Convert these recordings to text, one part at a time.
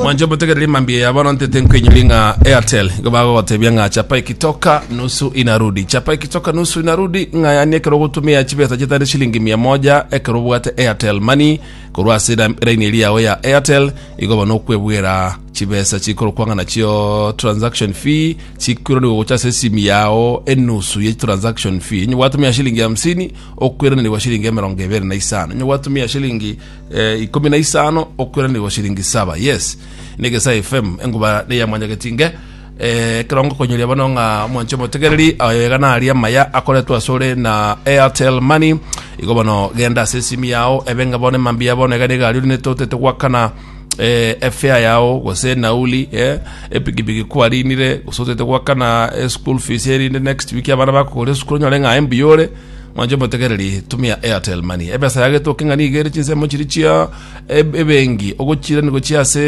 mwanche motegerere mambia ya bono ntete nkoinyori ng'a airtel igo bagogotebia ng'a chapa ikitoka nusu inarudi chapa ikitoka nusu inarudi ng'a yani ekero ogotumia chibesa chitari shilingi mia moja ekero obwate airtel mani korwa ase ira- iraini eri yao ya airtel igo bono okwebwera chibesa chikorokwa ng'a nachio transaction fee chikwiranigwa gocha ase esimi yao enusu ye transaction fee inye gwatumia shilingi hamsini okwiranerigwa shilingi emerongo ebere na isano inye gwatumia shilingi Eh, ikomi na isano okweranirwa shilingi saba yes negesa fm enguba neyamwanyagetinge eh, kerongo konyoria bono ng'a mwanche motegereri ayega nari amaya akoretwe asore na airtel money igo bono genda ase esimi yao ebenge bono emambia bono egane egari ori netotete gwakana eh, efea yao gose nauli eh, epigipigi kwarinire gose otete gwakana eh, school fees erinde next week abana bakogora esukuru nyore ng'a embuyore Mwanche omotegereri, tumia Airtel Money. Ebesa yagetwe oke ng'a nigo ere chinsemo chiria chia eb- ebenki ogochiirani gochia ase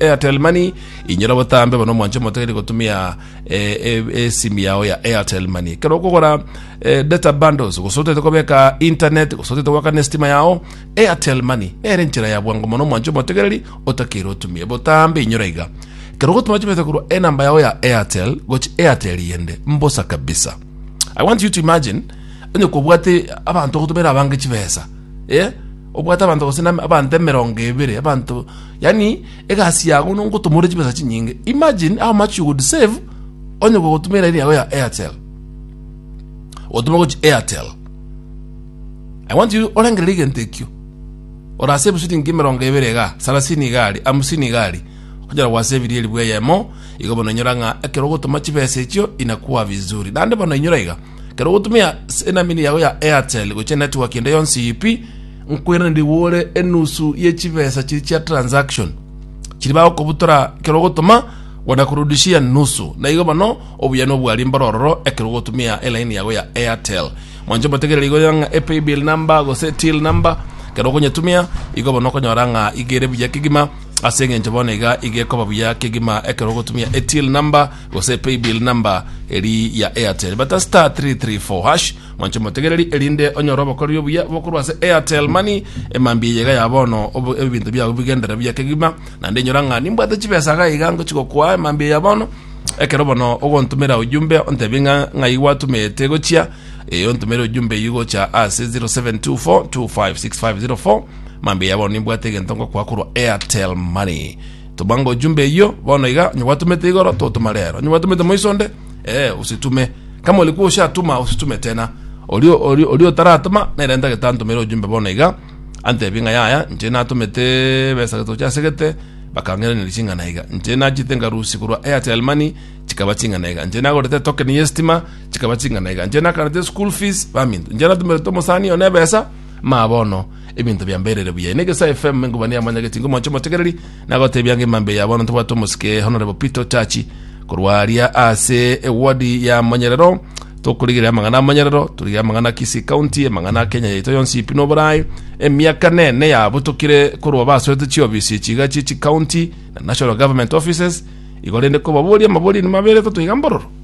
Airtel Money. Inyora obotambe bono mwanche omotegereri gotumia eh, eh, esimi yao ya Airtel Money. Ekero okogora eh, data bundles gose otete kobeka internet gose otete goakana estima yao, Airtel Money nere enchera ya bwango mono mwanche omotegereri otakeire otumie. Botambe inyora iga. Ekero ogotuma chibesa korwa enamba yao ya Airtel gochia Airtel yende, mbosa kabisa. I want you to imagine onye kobwate abanto gotumera abange chibesa eh obwate abanto gose na abanto emerongo ebere abanto yani egasi yago nongotumore chibesa chinyinge imagine how much you would save onye gotumera iri yago ya airtel otuma gochi airtel i want you orengerere egento ekio orasave silingi emerongo ebere iga sarasini igari amusini igari Onyora gwasebirie elifu eyemo, igo bono inyora ng'a ekero ogotoma chibesa echio inakwa vizuri. Naende bono inyora iga, ekero ogotumia s- enamini yago ya Airtel gochia network ende yonsi ip, nkweraniri gore enusu ye chibesa chiria chia transaction chiri bagokobutora ekero ogotoma wanakurudishia nusu. Na igo bono obuya nobwaria mboro ororo ekero ogotumia elaini yago ya Airtel. Mwanche omotegereri igo onyora ng'a epaybill number gose till number ekero okonyetumia igo bono okonyora ng'a iga ere buya kegima Ase engencho bono iga iga ekoba buya kegima ekero ogotumia etill number gose paybill number eri ya airtel bata star 334 hash mwancho motegereri erinde onyore obokoreri obuya bokorwa ase airtel money emambia eyega ya bono obo- ebinto biago bigendere buya kegima naende enyora ng'a nimbwate chibesa iga iga ngochi gokoa emambia ya bono ekero bono ogontumera ujumbe ontebie ng'a ng'ai gwatumete gochia ee ontumere ujumbe eywo gocha ase 0724256504 Mambia bono nimbwate egento ngokoa korwa Airtel Money. Toma ngo ojumbe eyio bono iga onye gwatomete igoro totoma rero. Onye gwatomete moiso onde eh usitume. Kama ori kwa oshatuma usitume tena. Ori ori ori otaratoma nere ntagete antomere ojumbe bono iga antebie ng'a yaya inche natomete ebesa getochi asegete bakang'iraneria ching'ana iga. Inche nachete ngarusia korwa Airtel Money chikaba ching'ana iga. Inche nagorete etoken y'estima chikaba ching'ana iga. Inche nakarete eschool fees baminto. Inche natomerete omosani one ebesa Maa bono ebinto biamberire buya. Ine Gesae FM mengubani amonyageti ngomoche omotegereri nagotebia ngima mbe ya bono ntobwate omosike Honorable Peter Otachi korwa aria ase ewodi ya Monyerero tokorigerera amang'ana a Monyerero torigerera amang'ana a Kisii County amang'ana a Kenya yaito yonsi ipi na oborai emiaka nene yabutokire korwa basorete chiofisi chiga chie chicounty na national government offices igo rende kobaboria amaboria ni maberete toiga mbororo